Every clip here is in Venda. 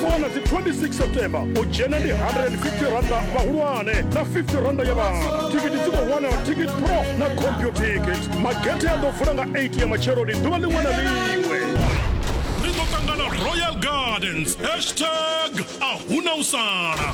wana dzi 26 september u dzhena ndi 150 randa vhahulwane na 50 randa ya vhana thikiti dzi khou wanala ticket pro na computicket magethe a ḓo vula nga 8 ya matsheloni ḓuvha ḽiṅwe na ḽiṅwe ri ḓo ṱangana royal gardens hashtag a huna u sala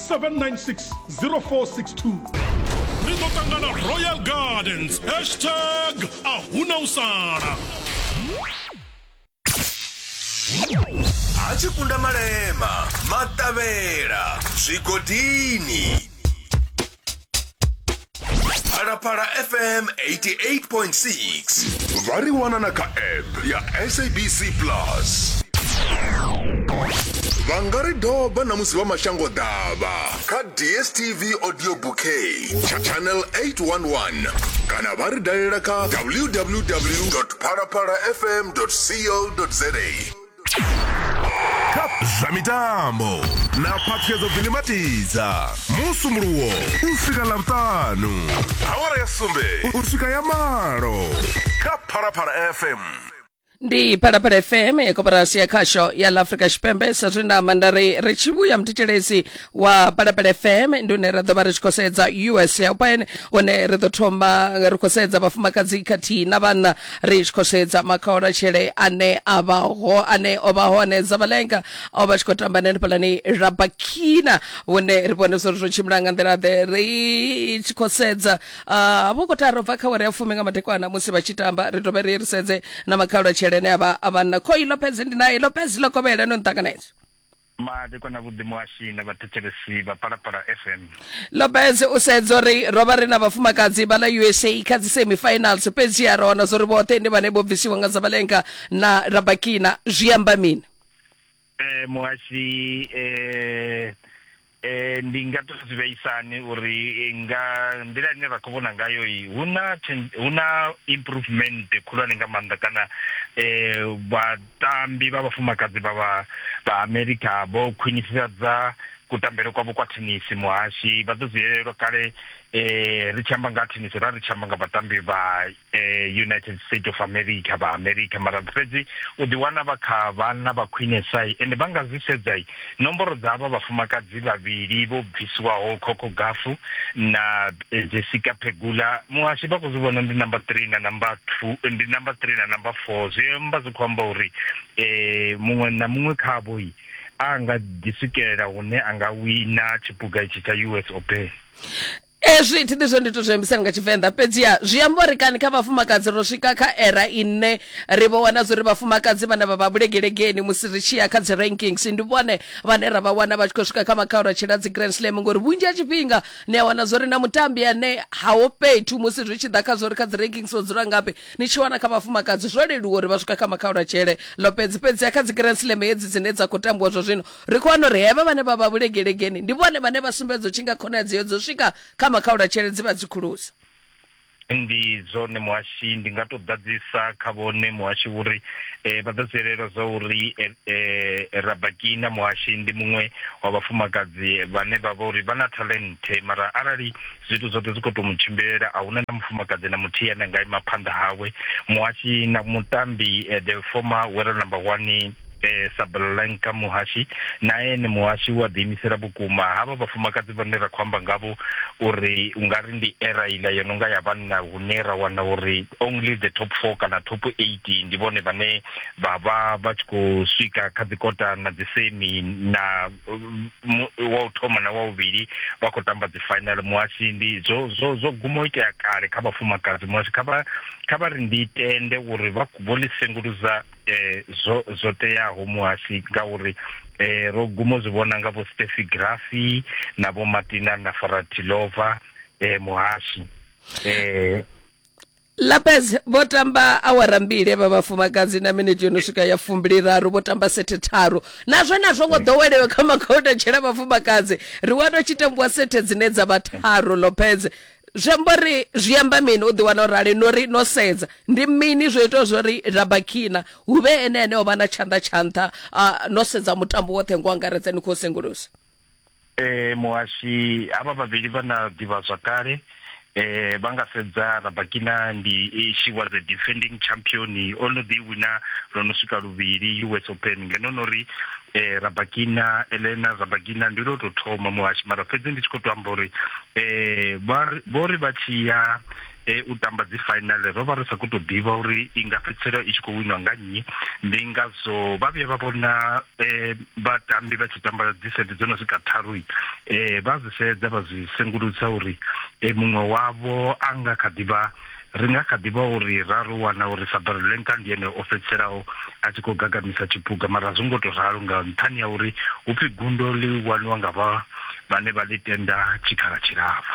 796 ri ḓo ṱangana royal gardens hashtag a huna u sala a tshi kunda malema maṱavhela zwigodini phalaphala fm 88.6 vha ri wana na kha app ya sabc plus vha nga ri doba na musi vha mashango ḓavha kha dstv audio bouquet tsha channel 811 kana vha ri dalela kha www phalaphalafm co za zwa mitambo na phaṱhuyedzo bvini matidza musumuluwo u swika ḽavhutanu awara ya sumbe u swika ya malo kha phalaphala fm ndi phalaphala fm koporasi ya khasho ya la afrika tshipembe sa zwe nda amba nda ri ri tshi vhuya muthetshelesi wa palapala fm ndi une ra ḓo vha ri tshi khou sedza us open une ri ḓo thoma ri khou sedza vhafumakadzi khathihi na vhanna ri tshi khou sedza makhaolatshele ane a vha ho ane o vha hone zavalenga o vha tshi khou tamba nenefhalani rabakina vhune ri vhone zwo ri zwo tshimbila nga nḓila ḓe ri tshi khou sedza ah, vho khou taro bva kha wari ya fumi nga madekwana musi vha tshi tamba ri dovhe ri ri sedze na makhaolatshele ane a vha a vhanna khoi lopez ndi naye lopez lokovhela no nṱanganedza Madekwana Vhuḓi Muhashi na Vhathetshelesi vha Phalaphala FM. Lopez u sedza uri, Ro vha ri na vhafumakadzi vha ḽa USA kha dzi semi finals, fhedziha ra wana zwa uri vhoṱhe ndi vhane vho bvisiwa nga Zabalenka na Rabakina. Zwi amba mini? Eh, muhashi eh, eh, ndi nga to zwi vheisani uri eh, nga nḓila ine ra khou vhona ngayo i hu na chen- hu na improvement khulwane nga maanḓa kana eh, vha Vhatambi vha vhafumakadzi vha vha vha Amerika vho khwinifhadza kutambele kwavho kwa thenisi. Muhashi vha ḓo zwi elelwa kale ri tshi amba nga ha thenisi ra ri tshi amba nga vhatambi vha United State of America vha Amerika mara fhedzi u ḓi wana vha kha vhanna vha khwinesa ende vha nga zwi sedza. Nomboro dza avha vhafumakadzi vhavhili vho bvisiwaho, Coco Gafu na Jessica Pegula, muhasho vha khou zwi vhona ndi number 3 na number 2 ndi number 3 na number 4 zwi amba zwi khou amba uri eh muṅwe na muṅwe khavho yi a nga ḓi swikelela hune a nga wina tshipuga itshi tsha US Open. Ezwi thi ḓi zwe ndi to zwi ambisa nga Tshivenḓa fhedziha zwi amba uri kani kha vhafumakadzi ro swika kha era ine ri vho wana zwa uri vhafumakadzi vhane vha vha vhulegelegeni musi ri tshi ya kha dzi rankings ndi vhone vhane ra vha wana vha tshi khou swika kha makhaula a tshila dzi grand slam ngori vhunzhi ha tshifhinga ni a wana zwa uri na mutambi ane haho fhethu musi zwi tshi ḓa kha zwa uri kha dzi rankings o dzula ngafhi ni tshi wana kha vhafumakadzi zwo leluwa uri vha swika kha makhaula tshele ḽo fhedzi fhedziha kha dzi grand slam hedzi dzine dza khou tambiwa zwa zwino Ri khou wana uri hevha vhane vha vha vhulegelegeni ndi vhone vhane vha sumbedza u tshi nga khonadzeo dza u swika kha makhaulatshele dzi vha dzi khulusa. Ndi zwone muhashi, ndi nga tou ḓadzisa kha vhone muhashi uri vha ḓo zwi elelwa zwa uri Rabakina muhashi ndi muṅwe wa vhafumakadzi vhane vha vha uri vha na thalenthe mara arali zwithu zwoṱhe zwi khou tou mu tshimbilela a hu na na mufumakadzi na muthihi ane a nga ima phanḓa hawe. Muhashi na mutambi the former world number one. eh, sablanka muhashi nae ni muhashi wa ḓiimisela vhukuma havha vhafumakadzi vhane ra khou amba ngavho uri u nga ri ndi era iḽa yo no nga ya vhanna hune ra wana uri only the top four kana top eight ndi vhone vhane vha vha vha tshi khou swika kha dzikota na dzisemi na wa u thoma na wa vhuvhili vha khou tamba dzi final muhashi ndi zwo zwo zwo guma u itea kale kha vhafumakadzi muhashi kha vha kha vha ri ndi tende uri vha vho ḽi senguluza eh zwo zwo teaho muhasi ngauri eh ro gumo zwi vhona nga vho Steffi Grafi na vho Martina na Faratilova eh muhasi eh Lapez vho tamba awara mbili vha vhafumakadzi na minute yo no swika ya fumbili raru vho tamba sethe tharu nazwo nazwo ngo ḓowelewe kha makhouta tshela vhafumakadzi ri wa to tshi tambiwa sethe dzine dza vha tharu Lopez zwi amba uri zwi amba mini u ḓiwana u rali no ri no sedza ndi mini zwo itaho zwo ri rabakina hu vhe ene ane o vha na tshanḓa tsha nṱha no sedza mutambo woṱhe ngo angaredza ni khou sengulusa eh muhashi havha vhavhili vha na ḓivha zwa kale eh vha nga sedza rabakina ndi eh, she was a defending champion o no ḓi wina lwo no swika luvhili us open ngeno no ri eh rabakina elena rabakina ndi lwo tou thoma muhashi mara fhedzi ndi tshi khou to amba uri eh vho ri vha tshi ya eh, u tamba dzi final ro vha ri sa khou tou ḓivha uri i nga fhedzisela i tshi khou winwa nga nnyi ndi ngazwo vha vhuya vha vhona eh, vhatambi vha tshi tamba dzi sete dzo no swika tharu eh, vha zwi sedza vha zwi sengulusa uri eh, muṅwe wavho a nga kha ḓi vha Ri nga kha ḓi vha uri ra ro wana uri Sabarulenka ndi ene o fhedziselaho a tshi khou gagamisa tshiphuga, mara a zwo ngo tou ralo nga nṱhani ha uri hu pfi gundo ḽi waniwa nga vha vhane vha ḽi tenda tshikhala tshilapfu.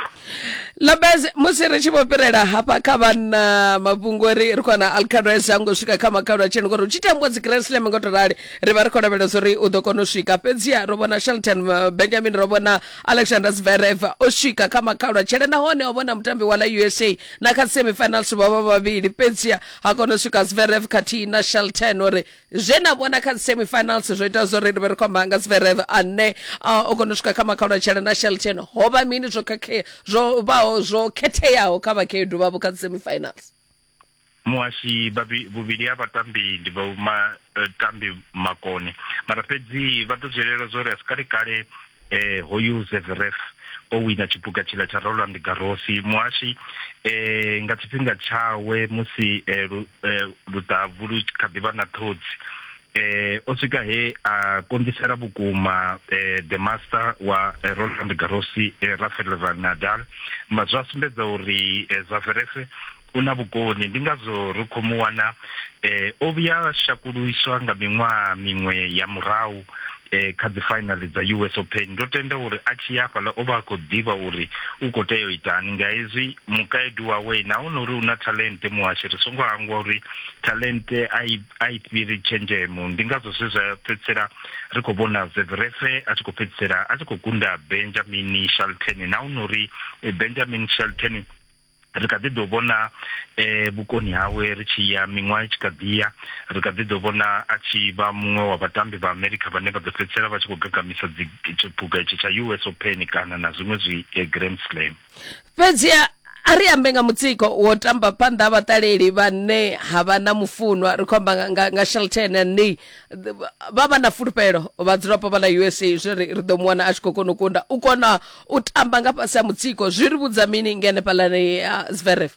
Lopez, Musi ri tshi vho fhirela hafha kha vhanna mafhungo ri ri khou ana Alcaraz a ngo swika kha makhalu a tsheni ngori hu tshi tambiwa dzi Grand Slam ngo to rali ri vha ri khou lavhelesa uri u ḓo kona u swika fhedziha ro vhona Shelton Benjamin ro vhona alexander zverev o swika kha makhalwa tshele nahone o vhona mutambi wa la usa na kha semifinals vha vha vhavhili fhedzia ha kona u swika zverev khathihi na shelton uri zwe na vhona kha semifinals zwo ita zwo ri ri vhe ri khou amba nga zverev ane a, o kona u swika kha makhalwa tshele na shelton ho vha mini zwo khakhea zwo vhaho zwo khetheaho kha vhakhaedu vhavho kha semifinals muhashi vhuvhili ha vhatambi ndi vha vhatambi eh, makone mara fhedzi vha ḓo zwielela zwa uri a si kale kale eh hoyu zevref o wina tshipuka tshila tsha roland garosi muhashi eh nga tshifhinga tshawe musi eh, eh luṱavu lu kha ḓi vha na ṱhodzi eh o swika he a konḓisela vhukuma eh the master wa eh, Roland Garros eh, Rafael van Nadal ma zwa sumbedza uri eh, Zverev u na vhukoni ndi ngazwo ri khou mu wana eh o vhuya shakuluiswa nga miṅwaha miṅwe ya murahu eh kha dzi final dza US Open ndo tenda uri a tshi ya fhaḽa o vha a khou ḓivha uri u khou tea u itani nga hezwi mukaedu wawe na hone uri u na talente muhashi ri songo hangwa uri talente a i a i fhiri tshenzhemo ndi ngazwo zwe zwa fhedzisela ri khou vhona zeverefe a tshi khou fhedzisela a tshi khou gunda benjamin shelton na u nori eh, benjamin shelton ri kha ḓi ḓo vhona eh vhukoni hawe ri tshi ya miṅwaha i tshi kha ḓiya ri kha ḓi ḓo vhona a tshi vha muṅwe wa vhatambi vha america vhane vha ḓo fhedzisela vha tshi khou gagamisa dzi tshipuga itshi tsha us open kana na zwiṅwe zwi eh, grand slam fhedzi a ri ambe nga mutsiko wo tamba phanḓa ha vhaṱaleli vhane ha vha na mufunwa ri khou amba nga, nga, nga shelton ni vha vha na fulufhelo vhadzulapo vha ḽa usa zwi ri ri ḓo mu wana a tshi khou kona u kunda u kona u tamba nga fhasi ha mutsiko zwi ri vhudza mini ngenefhalani ya zveref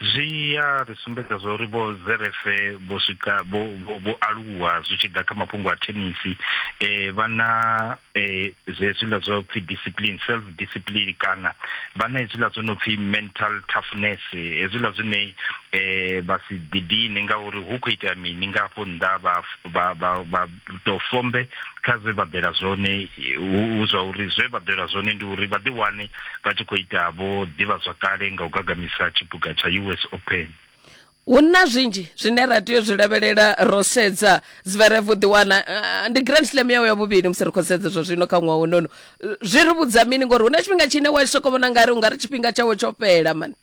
zwi ya ri sumbedza zwa uri vho zerefe vho swika vho aluwa zwi tshi ḓa kha mafhungo a thenisi um vha na um zwiḽa zwa pfhi discipline self discipline kana vha na hezwiḽa zwo no pfhi mental toughness hezwiḽa zwine um vha si ḓidine ngauri hu khou itea mini nga hafho nnḓa vha ḓo fombe kha zwe vha bela zwone hu zwa uri zwe vha bela zwone ndi uri vha ḓiwane vha tshi khou ita vho ḓivha zwa kale nga u gagamisa tshipuga tsha us open hu na zwinzhi zwine ra tea u zwi lavhelela ro sedza dzivhere vhu ḓiwana eh, ndi grand slam yawe ya vhuvhili musi ri khou sedza zwa zwino kha ṅwaha unono zwi ri vhudza mini ngori hu na tshifhinga tshine wa soko vhona nga ri u nga ri tshifhinga tshawe tsho fhela mani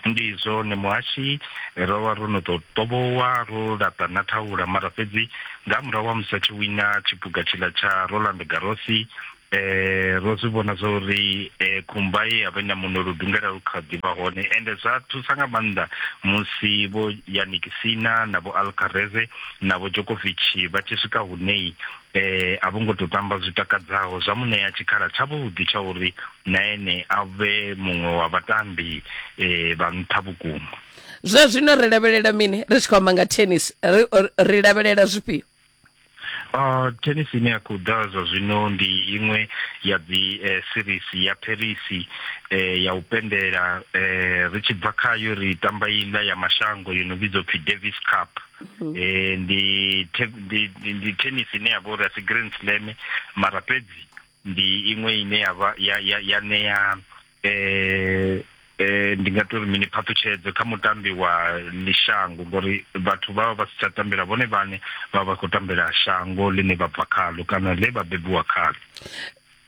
ndi zwone muhashi ro vha ro no tou tovhowa ro laṱa na thaula mara fhedzi nga murahu wa musi a tshi wina tshiphuga tshiḽa tsha roland garosi eh ro zwi vhona zwa uri eh khumba ye ya vha na muno lu dungela lu kha ḓivha hone ende zwa thusa nga maanḓa musi vho yanikisina na vho alcareze na vho jokovich vha tshi swika hunei e, a vho ngo tou tamba zwi takadzaho zwa mu ṋea tshikhala tshavhuḓi tsha uri na ene a vhe muṅwe wa vhatambi e, vha nṱha vhukuma zwa zwino ri lavhelela mini ri tshi khou amba nga tennis ri lavhelela zwifhio Uh, tennis ine ya khou ḓa zwa zwino ndi iṅwe ya dzi eh, series ya paris eh, ya u pendela eh, ri tshi bva khayo ri tamba iḽa ya mashango yo no vhidzwa pfi davis cup Mm. eh ndi ndi tennis ine ya vhori asi grand slam mara fhedzi ndi iṅwe ine ya vha ya ya ya ṋea eh eh ndi nga tori mini phaṱhutshedzo kha mutambi wa lishango ngori vhathu vha vha vha si tsha tambela vhone vhane vha vha khou tambela shango ḽine vha bva khalo kana ḽe vha bebiwa khalo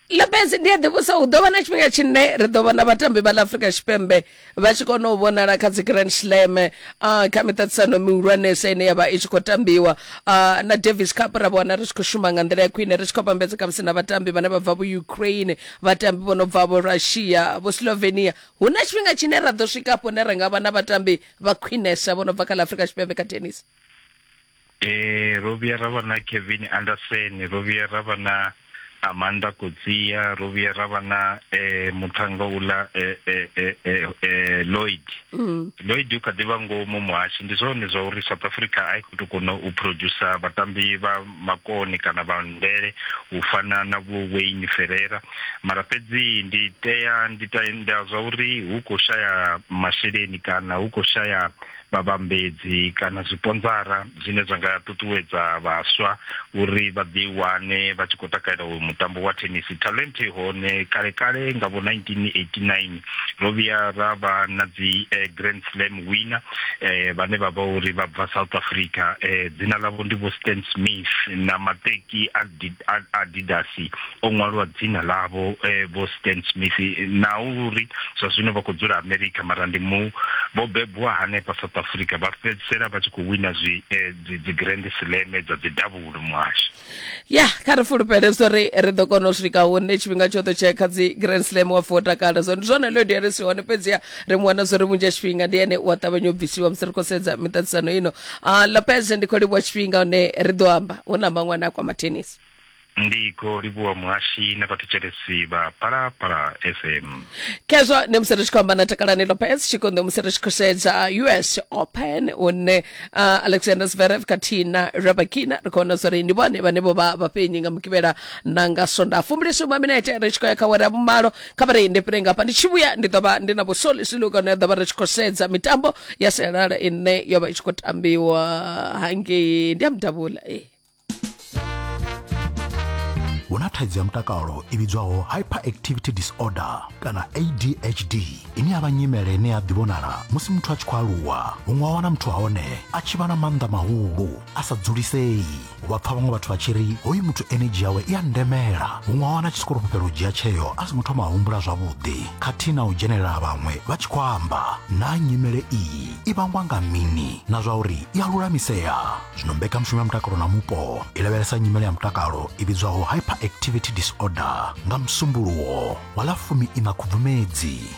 lopez ndi a ḓivhusa hu ḓo vha na tshifhinga tshine ri ḓo vhona vhatambi vha ḽa afrika tshipembe vha tshi kona u vhonala kha dzi grand slam uh, kha miṱaṱisano mihulwanesa ine ya vha i tshi khou tambiwa uh, na davis cup ra vhona ri tshi khou shuma nga nḓila ya khwine ri tshi khou vhambedza khamusi na vhatambi vhane vha bva vho ukraine vhatambi vho no bva vho russia vho slovenia hu na tshifhinga tshine ra ḓo swika afho ne ra nga vha na vhatambi vha khwinesa vho no bva kha ḽa afrika tshipembe kha tennis Ee, ro vhuya ra vha na Kevin Anderson, ro vhuya ra vha na Amanda Kotsia, ro vhuya ra vha na eh muthannga uḽa eh eh eh eh, eh, Lloyd. Mm. Lloyd u kha ḓi vha ngomu muhashi ndi zwone zwa uri South Africa a i khou tou kona u producer vhatambi vha makoni kana vha ndele u fana na vho Wayne Ferreira mara fhedzi ndi tea ndi tenda zwa uri hu khou shaya masheleni kana hu khou shaya vhavhambedzi kana zwiponzara zwine zwa nga ṱuṱuwedza vhaswa uri vha ḓi wane vha tshi khou takalela uyu mutambo wa thenisi talent hone kale kale nga vho 1989 ro vhuya ra vha na dzi eh, grand slam winner eh, vhane vha vha uri vha bva south africa eh, dzina ḽavho ndi vho stan smith na mateki a adidas o ṅwalwa dzina ḽavho eh, vho stan smith na uri zwa zwino vha khou dzula america mara ndi mu vho bebwa hanefha south africa vha fhedzisela vha tshi khou wina zwi eh, dzigrand slam dza dzidavhulo muhasho ya kha ri fulufhele zwo ri ri ḓo kona u swika hune tshifhinga tshoṱhe tshee kha dzi grand slam wa fa o takala zwo ndi zwone leo diaresi hone fhedziha ri mu wana zwo ri vhunzhi ha tshifhinga ndi ene u a ṱavhanya u bvisiwa musi ri khou sedza miṱaṱisano ino uh, lopez ndi khou livhuwa tshifhinga hone ri ḓo amba hu na maṅwe ane a kwama tennis ndi khou livhuwa muhashi na vhathetshelesi vha palapala fm khezwo ndi musi ri tshi khou amba na takalani lopez tshikonḓo musi ri tshi khou sedza us open hune uh, alexander zverev khathihi na rabakina ri khou vhona zwori ndi vhone vhane vho vha vhafhenyi nga mukivhela na nga sonda fumbilisuma minete ri tshi khou ya kha wera vhumalo kha vha reinde fhire ngafha ndi tshi vhuya ndi ḓo vha ndi na vhusoli silu kana ya ḓo vha ri tshi khou sedza mitambo ya sialala ine yo vha i tshi khou tambiwa hangei ndi ya mudavhula ee hu na thaidzo ya mutakalo i vhidzwaho hyperactivity disorder kana adhd ine ya vha nyimele ine ya ḓivhonala musi muthu a tshi khou aluwa huṅwe wa wana muthu wa hone a tshi vha na maanḓa mahulu a sa dzulisei u vha pfa vhaṅwe vhathu vha tshi ri hoyu muthu enedzhi yawe i a ndemela huṅwe a wana tshi sikoro fhufhela u dzhia tsheo a songo thoma a humbula zwavhuḓi khathihi na u dzhenelela ha vhaṅwe vha tshi khou amba naa nyimele iyi i vhangwa nga mini na zwa uri i a lulamisea zwino mbekanyamushumo ya mutakalo na mupo i lavhelesa nyimele ya mutakalo i vhidzwaho hyperactivity disorder nga musumbuluwo wa ḽa fumi ina khubvumedzi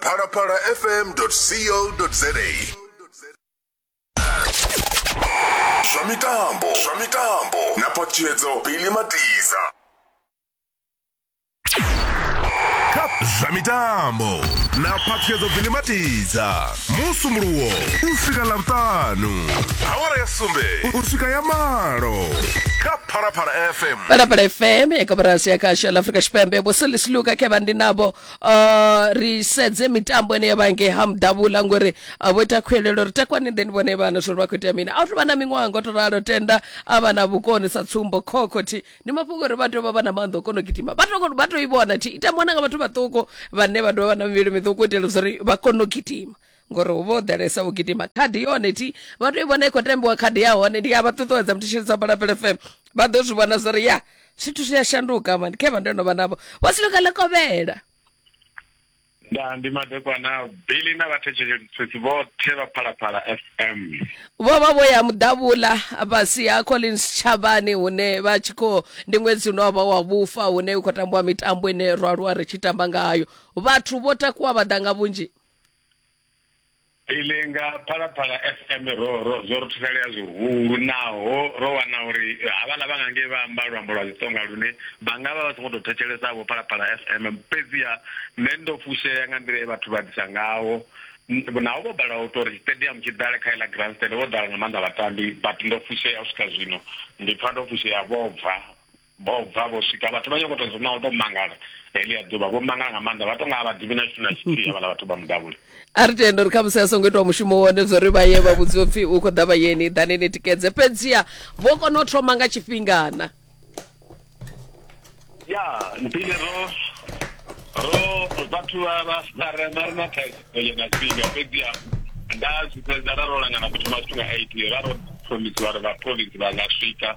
phalaphala fm co za zwa mitambo zwa mitambo na ṱhalutshedzo bili matiza zwa mitambo na phaṱhuyedzo bili matiza musumuluwo u swika ḽavhutanu awara ya sumbe u swika ya malo kha phalaphala fm phalaphala fm ya kabarasi ya kasha la afrika tshipembe vho selisiluka khe vha ndi navho uh, ri sedze mitambo ine yavha ngei ha mudavhula ngori uh, vho ita khwelelo ri takwani then vhone vhana zwori vha khou itea mini a u tovha na miṅwaha ngo to ralo tenda a vha na vhukoni sa tsumbo khokhothi ndi mafhungo uri vha tea u vha vha na maanḓa o kona u gidima vha to- vha to i vhona thi ita mona nga vhathu vhaṱuku vhane vha dovha vha na mivhili miṱuku u itela zwori vha kone u gidima ngori hu vha ho ḓalesa u gidima khadi yone ti vha to i vhona i khou tambiwa khadi ya hone ndi a vha ṱuṱuwedza muthishelisa balapele fm vha ḓo zwi vhona zwo ri ya zwithu zwi a shanduka mani khe vha ndo no vha navho vho siluka ḽa kovhela nda ndi madekwana bili na vhathetshelesi vhoṱhe vha phalaphala fm vho vha vho ya muḓavhula fhasi ha collins tshavhani hune vha tshi khou ndi ṅwedzi une wavha wa vhufa hune u khou tambiwa mitambo ine ro aluwa ri tshi tamba ngayo vhathu vho takuwa vha ḓa nga vhunzhi ile nga phalaphala fm ro ro zwo ri thusalea zwihulu naho ro wana uri havhaḽa vha nga ngei vha amba luambo lwa tsonga lune vha nga vha vha songo tou thetshelesa vho phalaphala fm fhedziha nṋe ndo fushea nga nḓila ye vhathu vha ḓisa ngaho naho vho bala u tori stadium tshi ḓale kha iḽa grand stand vho ḓala nga maanḓa vhatambi but ndo fushea u swika zwino ndi pfa ndo fushea vho bva Vho bva vho swika vhathu vha nyokoto zwi naho to mangala helia ḓuvha vho mangala nga maanḓa vha to nga vha ḓivhi na tshithu na tshithihi havhala vhathu vha mudavhuli a ri tende uri khamusi a songo itiwa mushumo wone zwo ri vha ye vha vhudziwa pfhi u khou ḓa vhayeni ḓani ni tikedze fhedziha vho kona u thoma nga tshifhingana ya mpile ro ro vhathu vha vha fara na ri na thaidzo ye na tshifhinga fhedziha nda zwi fhedza ra ro langana ku thoma zwithu nga eight ra ro promise vha ri vha province vha nga swika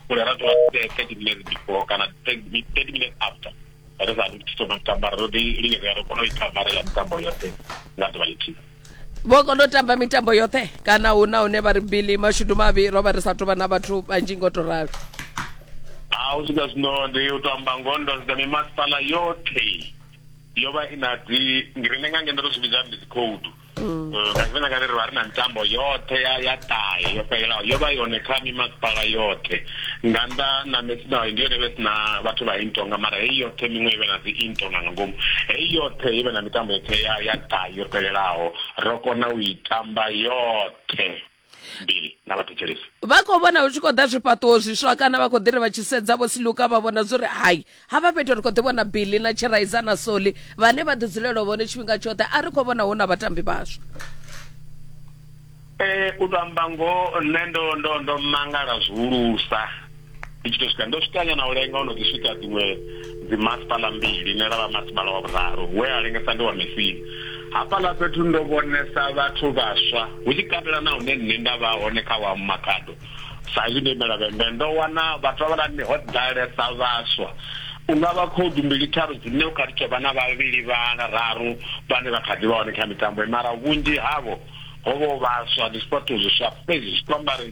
u ya ra tovha thirty minutes before kana thirty minutes after ri sa ri thoma mitambo ro ḓi lingedza ro kona u i ṱambalela mitambo yoṱhe nga ḓuvha lithihi vho kona u tamba mitambo yoṱhe kana hu na hune vha ri bili mashudu mavhi ro vha ri sa tovha na vhathu vhanzhi ngo to ralo a u swika zwino ndi u to amba ngoho ndo sedza mimasipala yoṱhe yo vha i na dzi ngirine nga ngeno ro zwi vhidza ndi dzi khoudu Mm. Mm, nga tshifhinga kale ri vha ri na mitambo yoṱhe ya ya ṱahe yo fhelelaho yo vha yone kha mimasipala yoṱhe nga nnḓa na mesinaho ndi yone vhe sina vhathu vha intonga mara heyi yoṱhe miṅwe i vhe na dzi intonga nga ngomu heyi yoṱhe i vhe na mitambo yoṱhe ya ya ṱahe yo fhelelaho ro kona u i tamba yoṱhe mbili na vhathetshelesi vha khou vhona hu tshi khou ḓa zwifhaṱuwo zwiswa kana vha khou ḓi ri vha tshi sedza vho siluka vha vhona zwo ri hai havha fhethu ri khou ḓi vhona bili na tshiraiza na soli vhane vha ḓi dzulela vhone tshifhinga tshoṱhe a ri khou vhona hu na vhatambi vhaswa um u to amba ngoho nṋe ndo ndo ndo mangala zwihulusa ndi tshi to swika ndo swika nyana u lenga ono ḓi swika dziṅwe dzi masipala mbili ne lavha masipala wa vhuraru we a lengesa ndi wa mesini hafhaḽa fhethu ndo vhonesa vhathu vhaswa hu tshi katela na hune nṋe nda vha hone kha wa makhado sa izwi ndo imela vhembe ndo wana vhathu vha vhalani ho ḓalesa vhaswa unga vha khoudu mbili tharu dzine u kha tou vha na vhavhili vhana raru vhane vha kha ḓi vha hone kha mitambo mara vhunzhi havho ho vho vhaswa ndi sipotho zwiswa fhedzi zwi kwambari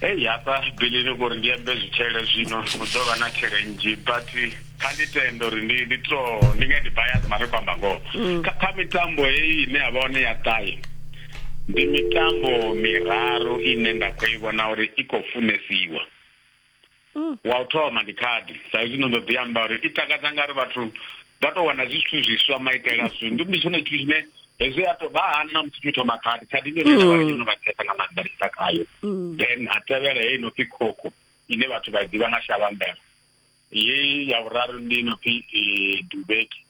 hei hafha bilini kuri ndi ambe zwitshele zwino hu ḓo vha na tshele nnzhi but kha ndi tende uri ndi ndi to ndi nga ndi bias mara khou amba ngoho mm. kha mitambo heyi ine ya vha hone ya ṱahe ndi mitambo miraru ine nda khou i vhona uri i khou funesiwa mm. wa u thoma ndi khadi sa izwi no ndo ḓi amba uri i takadza nga ri vhathu vha tou wana zwithu zwiswa maitele a zwithu ndi tshone tshithu tshine hezwi a to vha hani na musi tshithu thoma khadi khadi ndi yone vha tshino vha thetsa nga maanḓa lisa khayo mm. then ha tevhela heyi no pfi khokho ine vhathu vha ḓivha nga shavhambela ye ya vhuraru ndi no pfi eh, dubeki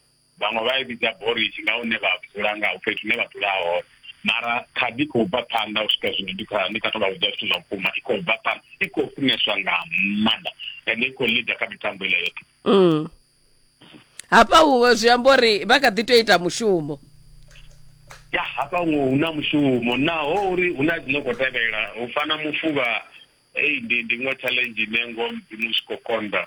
vhaṅwe vha i vhidza borishi nga hune vha dzula nga fhethu hune vha dzula hone mara khadi khou bva phanḓa u swika zwino ndi kha ndi kha to vha vhudza zwithu zwa vhukuma i khou bva phanḓa i khou funeswa nga maanḓa ende i khou leader kha mitambo ile yoṱhe mm. hafha huwe zwi amba uri vha kha ḓi tea ita mushumo ya hafha huwe hu na mushumo naho uri hu na dzino khou tevhela u fana mufuvha ei ndi ndi iṅwe challenge ine ngo mudzimu zwi khou konḓa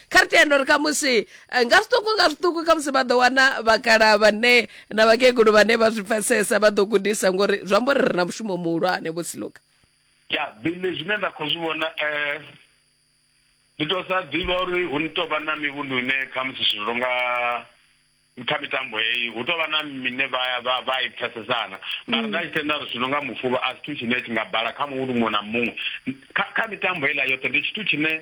kha ri tende uri khamusi eh, nga zwiṱuku nga zwiṱuku khamusi vha ḓo wana vhakala vhane na vhakegulu vhane vha zwi pfesesa vha ḓo gudisa ngori zwi amba uri ri na mushumo muhulwane vho siluka ya bile zwine nda khou zwi vhona um ndi to sa ḓivha uri hu ni tou vha na mivhundu ine khamusi zwithu zwo nga kha mitambo heyi hu tou vha na mine vha i pfesesana mara nda tshi tenda ri zwino nga mufuvha a zwithu tshine tshi nga bala kha muvhundu muṅwe na muṅwe kha mitambo heiḽa yoṱhe ndi tshithu tshine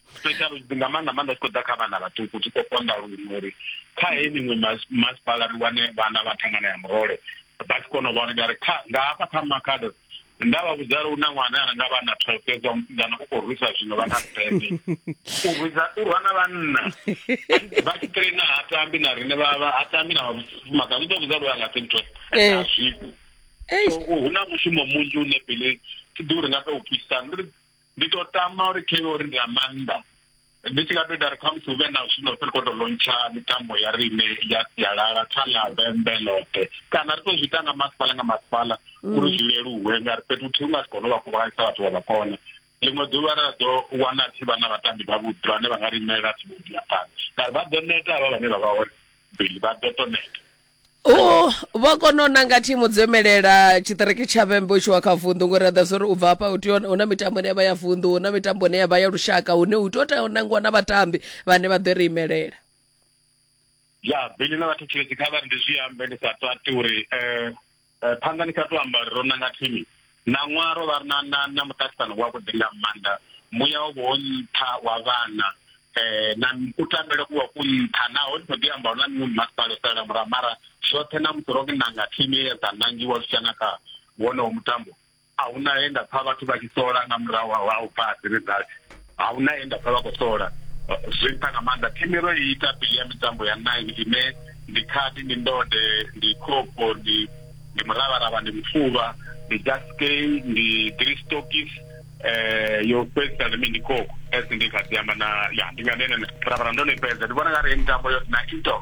special nga maanḓa maanḓa tshi khou ḓa kha vhana vhaṱuku tshi khou konḓa luṅwe uri kha he miṅwe masipala ri wane vhana vha thangana ya murole vha tshi kona u vhona ngari kha nga hafha kha makhado nda vha vhudza uri una ṅwana ana nga vhana twelve fhedzi wa musidzana u khou rwisa zwino vha na sete u rwisa u rwa na vhanna vha tshi traina ha tambi na rine vha ha tambi na vhafumakadzi u ḓo vhudza uri a nga si ntwe eh. a zwiko hu na mushumo munzhi une pele thi ḓi uri nga to u pfisa Ndi to tama uri khe uri ndi a maanḓa ndi tshi nga to ita ri kha musi hu vhe na zwino ri khou tou lontsha mitambo ya riṋe ya sialala kha ḽa vhembe ḽoṱhe kana ri to zwi ita nga masipala nga masipala mm. uri zwi leluwe nga ri fhethu thihi nga si kone u vha kuvhanganyisa vhathu vha vha kona ḽiṅwe ḓuvha ra ḓo wana thi vha na vhatambi vhavhuḓi vhane vha nga ri imela thi vhuḓi ya phanḓa ngauri vha ḓo neta havha vhane vha vha hone bili vha ḓo to neta Oh, vha kona u nanga thimu dzo imelela tshiṱiriki tsha vhembe u tshi wa kha vunḓu ngori aḓa zwo ri u bva hafha u tea hu na mitambo ine ya vha ya vunḓu hu na mitambo ine ya vha ya lushaka hune u tea u tea u nangiwa na vhatambi vhane vha ḓo ri imelela ya bili na vhathu tshelezi kha vha ri ndi zwi ambe ndi sa tati uri um Eh, phanḓa ni sa tou amba uri ro nanga thimu ṋaṅwaha ro vha ri na na na muṱaṱisano wavhuḓi nga maanḓa muya wo vha wo nṱha wa vhana um na kutambele ku vha ku nṱha naho ndi khou ḓi amba hu na miṅwe mimasipala o salela murahu mara zwoṱhe na musi ro nanga thimu ye ya dza nangiwa zwi tshia na kha wonowo mutambo A hu na he nda pfa vhathu vha tshi sola nga murahu ha u pfa Asiri Dati. A hu na he nda pfa vha khou sola. Zwi nṱha nga maanḓa. Thimu ro i ita bili ya mitambo ya nine ine ndi khadi, ndi ndode, ndi khofho, ndi ndi muravharavha, ndi mufuvha, ndi jaskei, ndi gristokis, eh yo fhedzisa ndi mini ndi khokho. As ndi kha ḓi amba na ya ndi nga ndi henene. Muravharavha ndo no i fhedza. Ndi vhona nga ri heyi mitambo yoṱhe na indoor.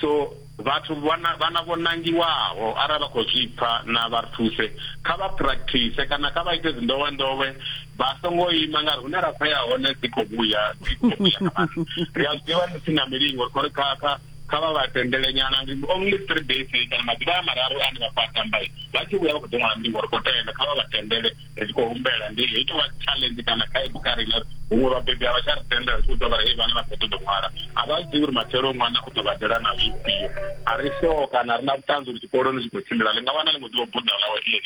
So vhathu vhana vhana vho nangiwaho arali vha khou zwi pfa na vha thuse kha vha practice kana kha vha ite dzi ndowe ndowe vha songo ima ngari hune ra khoya hone dzi khou vhuya dzi khou vhuya ri a zwiḓivha ndi si na milingo ri khou kha kha kha vha vha tendele nyana ndi only three days kana maḓuvha a mararu ane vha khou a tamba vha tshi vhuya vha khou ḓo ṅwala milingo ri khou tenda kha vha vha tendele ri tshi khou humbela ndi hei tovha challenge kana khaedu kha riṋe huṅwe vhabebi a vha tsha ri tenda ri tshi khou tou vha hei vhana vha khou ṱoḓo ṅwala a vha zwi ḓivhi uri matshelo ṅwana u ḓo badela na zwifhio a ri so kana ri na vhuṱanzi uri tshikoloni zwi khou tshimbila ḽi nga wana ḽi ngo ḓivha buḓa ḽawe ḽi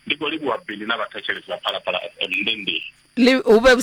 ndi khou livhuwa bili na vhathetshelesi vha phalaphala fm ndi ndi hu vhe